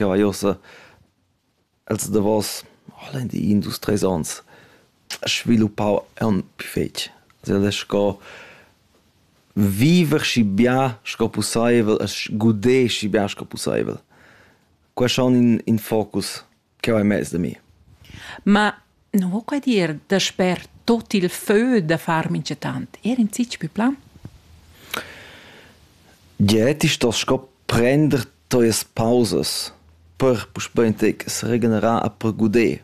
ja vai ossa els davos holendi in dus tres ons sviluppau aunc più fetg. Also el è sco viver schi bia sco pussaivel e gudé schi bia sco pussaivel. Quai schon in, in focus che vai mez da mi. Ma Non vo quai dir dasper tot il fö da far minchatant, eir in zich pü plan? Gie, ti stos sco prender tuas pausas per puspei entec seregenerar a per guder.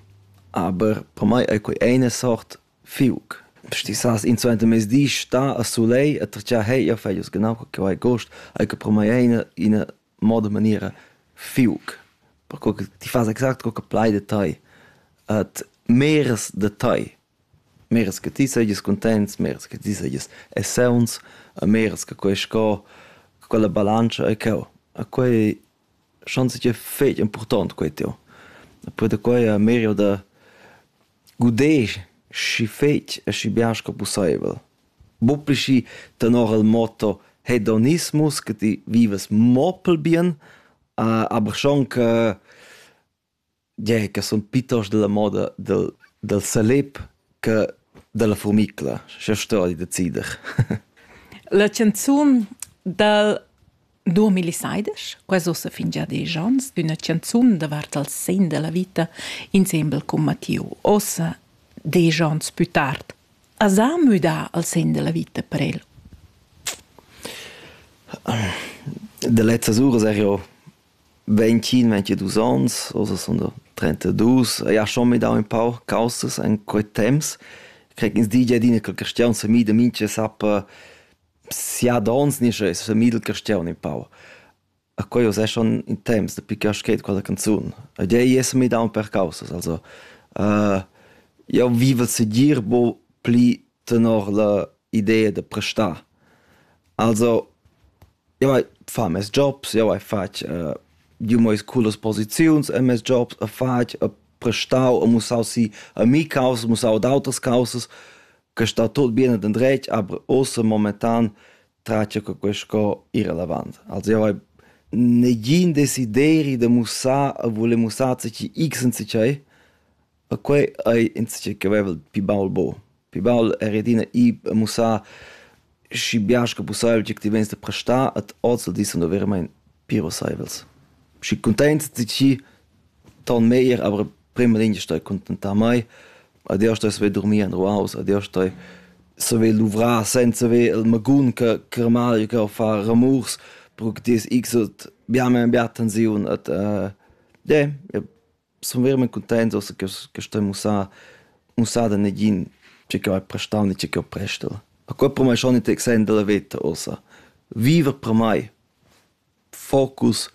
Aber per mai ei quei eine sort fiuc. Sti sas in suenter mezdi sta a sulei a tracciar hei, ja feglius genau che vai gost, ei che per mai eine eine moda e maniera fiuc perco che ti fas exact co che plai da tai et meras da tai meras che ti seigis contents meras che ti seigis e sauns e meras che quei sco che quella balantscha e cheu e quei schon seigi fetg impurtont quei teu e poi da quei a merio da Gudesch schi fetg e schi bien sco pusseivel. Buca schi tenor il motto hedonismus che ti vivas mo pel bien, aber schon che gie che sun piuttost dalla moda del del salip che dalla furmicla. Scha sto ei decider. La canzun dal 2016, quas ussa fin già desch ons, d'üna chanzun davart al sen da la vita insembel cun Mattiu. Ossa, desch ons pü tard, as ha müdà al sen da la vita per el? De lezzas uras er jo 25, 22 ans, also sono da 32. E ha schon mit auch ein paar Kausas in quei temps. Krieg ins DJ adina quel question se mi de minche sappa siadons nischa es famiglia dal caschiun in pau. A quai us eschan in temps dapi che schet quella canzun. Ed ei es mi daun per causas, also uh, jau viva segir bo pli tenor la idea da prestar. Also, jau hai fa mes jobs, jau hai fatg uh, giu meis cullas posiziuns e mes jobs, a fatg, a prestau, a mussau si a mi causas, mussau ad auters causas, che sta tut bien ed endretg, aber ussa momentan tracia che quei sco ir avanti. Also io hai negin desideri de mussar e voler mussar zici x in zicei, e quei ei in zici che vevel pi baul bo. Pi baul è redina i mussar schi bias che pussaivel tgi ti vens de prestar et oz dis sun veramente pir osaivels. Schi contents zici ton meglier, aber prima lingia stai contentar mei, adeus stai saver durmir en ruaus, adeus stai saver luvrar senza haver il magun che che mal che fa ramurs, perché ti es x ut bia meir bia tensiun et uh, yeah, sun verament cuntents che che stai mussar mussar da negin che che ho prestau né che che ho prestel. A quel per mei schon in exempel da veta ossa. Viva per mei! focus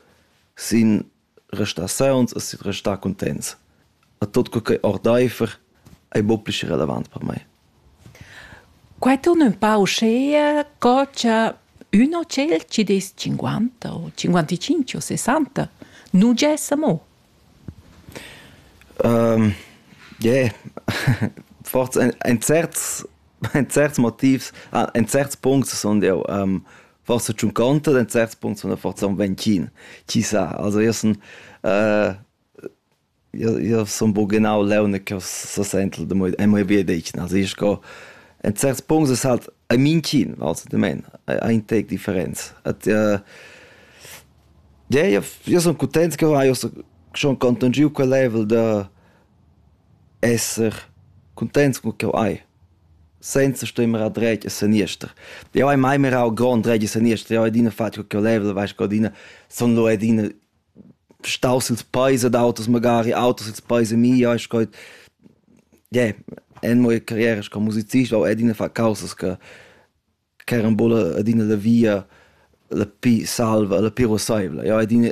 sin restar sauns e sin restar cuntents. A tot co che ordaifer ei bo pli relevant per mei. Quai torna un pau scea, co c'è uno ciel ci des 50 o 55 o 60, non c'è mo. Um, yeah. Forse ein, ein certs ein certs Motivs, ah, ein certs Punkte sind ja ähm, forsa tschunconta den certs punts von der forza un vencin chi sa also io sun äh, io io sun bo genau leune che so sentel de moi e moi vie decin also ich go en certs punts es halt ein mincin also de men ein tec differenz at äh, ja io io sun contents che io so schon contungiu quel level de esser cuntents cun ch'jeu hai, senza stoi mirar dretg e seniester. Jeu hai mai mirau grond dretg e seniester, jeu hai adina fatg co ch'jeu level, veis co adina sun lu adina staus ils peis ad auters magari, auters ils peis a mi, jeu hai sco, yeah, en mia carriera sco musicist ho adina fat causas che ch'eran buca adina la via la pli salva, la pli ruasseivla. Jeu hai adina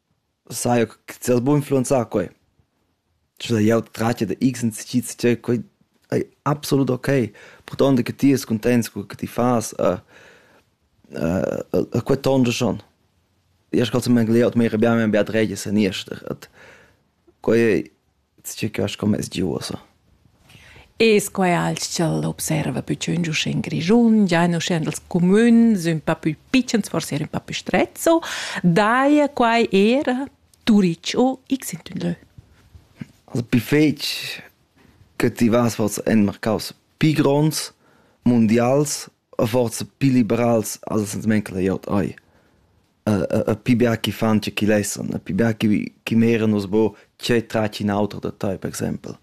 Sai che ti has buc influenzà quei. Sche sai jeu tratga da x incisids tgei quei ei absolut okay, purtonda che ti es cuntents co che ti fas e e quei tonscha schon. Io sco zi meglio, mia rabiama è bia dregia, seniester. Quai ei circa sco mez di uossa. E sco ei alch'el observa pü tschünt uschè in Grischun, giain uschè nels cumüns ün pa pü pitschens, forse eir ün pa pü strezzo, daja quai eir a Turic o x in ün lö. Also pi fetg che ti vas forsa en marcaus pi gronds, mundials, o forsa pi liberals, als ans manca da gl'ot eir. pi bia chi fan che chi lessan, pi bia chi chi meran nus bo tgei tratg in auter da tai, per exempel.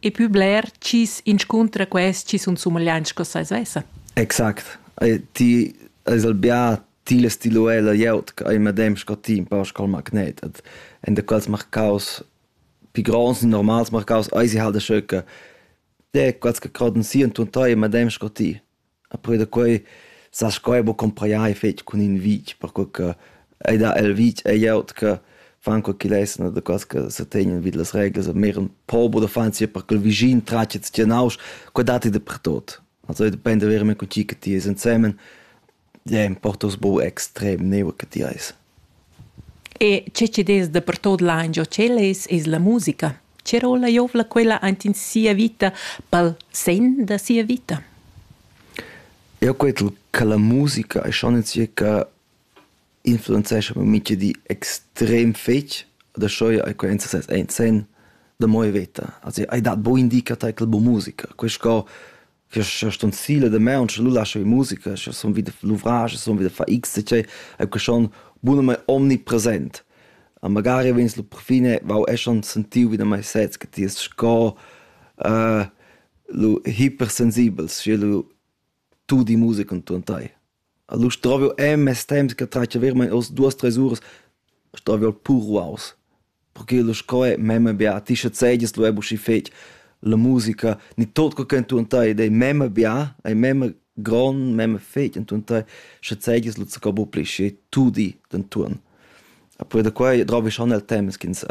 E pü bler chi's inscuntra quest chi sun sumagliants sco sai svessa. Exact. ti es el bia tila stiluella glieud ch'ei medem sco ti un po sco il magnet et in de quels marcaus pi gronds e normals marcaus ei si halt schö che de quels che croden si und tun tai medem sco ti E poi da quei sa sco ei buca cumpreiai fetg cun in vitg, perquei che ei dat el vitg e glieud che fan quei ch'igl es, no daquels che se tegnan vid las reglas, e mir ün pober uffant sia per ch'el vischin tratg e tgien nausch, quei dat ei dapertot. Also depend da verer mei co tgi che ti es ensemen, ja, importa us buc extrem, neua che ti eis. E che chi'd es dapertuot là ingio ch'el es, es la musica. Che rolla jouvla quella aint in sia vita, pel sen da sia vita? Eu cret cha la musica e schon in circa influenzescha per mincha di extrem fetg. Da schoja ai quaint sesez aint sen da moi veta. Also ai dat buin di cha tai quel bu musica. Quist co questa stunzila da maun sche lu lascha vi musica sche sun vi da luvrage sun vi da far x e cei e que schon bunamente omnipresent a magari vegns lu perfine vau e schon sentiu wieder mai sez che ti es sco uh, lu hipersensibels sche lu tu di musica con tu en tai Allura stroviu en mes temps che tratga veramein oz duas treis uras, stroviu pur ruaus. Perché sco è memma bia, a ti schazegias lu buca schi fetg la musica, ni tot quei ch'è entuorn tei ed ei memma bia, ei memma grond, memma fetg entuorn tei, schazegias lu zaccau buca pli schi tu di d'entuorn. E poi da quei drovischan el temps ch'ins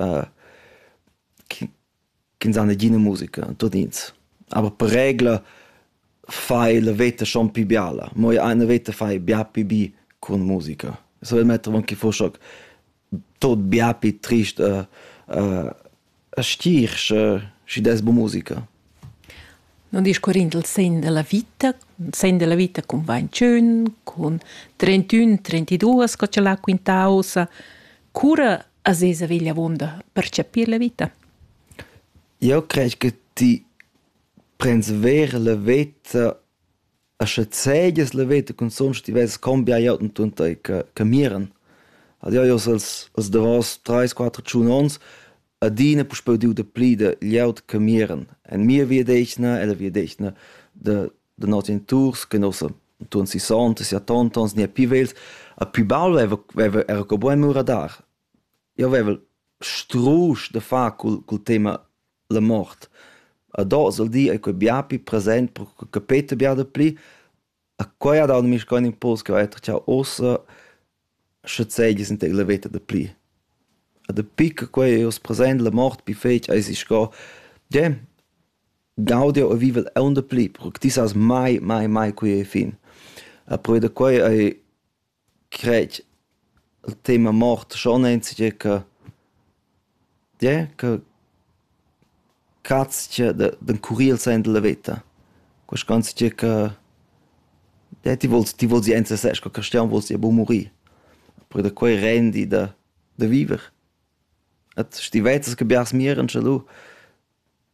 ch'ins ha negina musica, tud'ins. Aber per regla fai la veta schon pli biala. Mo io eine veta fai bia pli bi cun musica. So el metter avon che fuss hoc tot bia pli trist e e stir sche schi dess bu musica. Non discurrind il segn della vita, il segn della vita cun 21, cun 31, 32, sco ce l'ha quintausa, cura a sesa vegl avunda per chapir la vita? Eu crej che ti prends ver la veta e sche zegias la veta cunzunt sche ti vess combia jotten tun tai che che miran. Ad eu jos als als davos trais, quatter, tschun ons adina puspeu diu da pli da glieud che miran. En mia via d'eschna e la via d'eschna da da noss geniturs che nossa untuon sissonta, siattonta ons gnia pü vegls, a pü baul veva, veva era co buin mur a dar. Io veva strusch da far cul, cul tema la mort. A dos al di ei quei bia pü present, per che capeta bia da plü. A quei ha dau mischcoin impuls che ho etter ciao ossa Sche seigies in tec la veta dapli. E dapi che quei ei oz present, la mort pli fetg eisi sco, gie, gaudiu jeu e vivel aunc dapli, perche ti sas mai, mai, mai quei ei fin. E perquei da quei ei, cret, il tema mort schon enzatgei che Tgè ch'eu catscha d'encurrir sainza la veta, quaisch'anzatgé che tè ti vols ti vols ir ensasez cun quistiun, vols ir a bun murir. Oppür da quai rendi da da viver. E schi ti vezzas che biars miran scha lu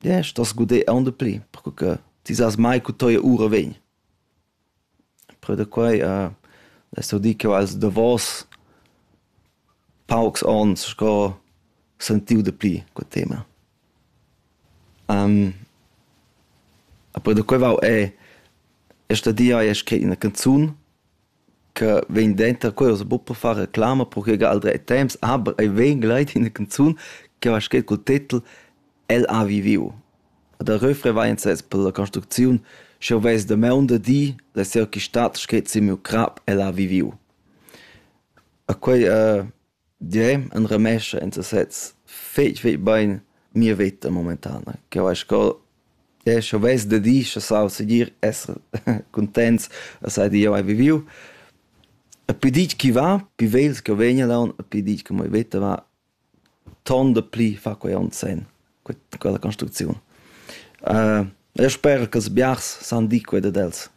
Desch t'has gudé aunc dapli, perque che ti sast mai co teia ura vegn. Però da quai less jeu dir ch'jeu haiel davos paucs onns sco sentiu dapli quel tema. E poi da quei vau è, è stadia esch scrit ina canzun que vegn denter quellas buca far reclama perche che al dret temps aber ei vegn gleit in canzun che va scret cul titel El ha viviu. A der refrain vai in sez per la construcziun sche ves de meun de di la seo chi stat scret si miu crap El ha viviu. A quei uh, Jeu enramescha en sesez fetg fetg bein mia veta momentana. Cheu eis sco jeu stovess da di schassau segir esser cuntents da sai che jeu hai viviu. E pli ditg ch'i va, pli vegls ch'jeu vegn laun e pli ditg che mia veta va, tonda pli fa quei onn senn, quella construcziun. E jeu sper ch'ils biars san dir quei dad els.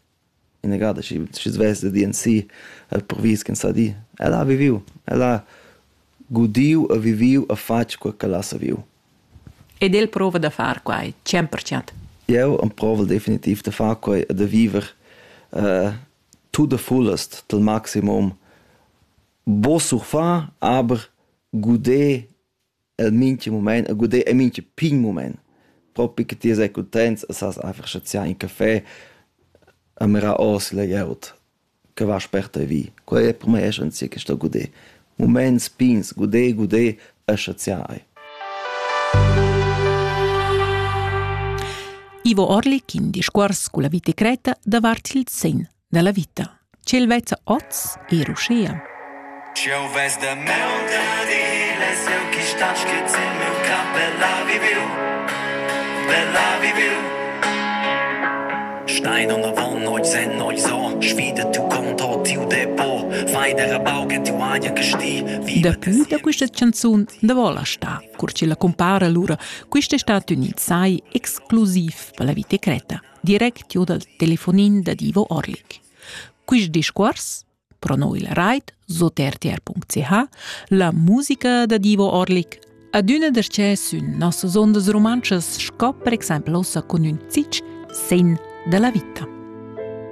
Inagada schi schi svess da di ensi ha previs ch'ins sa di: ella ha viviu, ella ha gudiu e viviu e fatg quei ch'ella sa viu. Ed el prova da far quai tschient per tschient. Jeu emprovel definitiv da far quei e da viver uh, to the fullest, til maximum. Bo surfar, aber guder el mincha mumaint e guder e mincha pign mumaint. Propi che ti sei cuntents e sas einfach chaziar in café e mirar ors la glieud che va sperta vi. Quella è per me essenza che sto guder. Moments pigns, guder, guder e chaziar ei. Ivo Orlik in discuors culla vita creta davart il sen dalla vita. Ch'el vezza oz er uschia. Eu vez da mel da diles, eu chi stat schiz in meu cap, bella viviu, bella viviu. Stein und Wand, euch sen euch so, schwide tu conto tiu depot, feider baugen tiu aia gesti. Dapü da questa canzun da vola sta, cur ci la compara lura, questa stati unit sai exclusiv per la vita creta. direct giu dal telefonin da Divo Orlik. Quist discuors, prono il rait sot rtr.ch, la musica da Divo Orlik adüna darchè sün nossas ondas rumantschas sco per exaimpel ossa cun ün zitsch sen da la vita.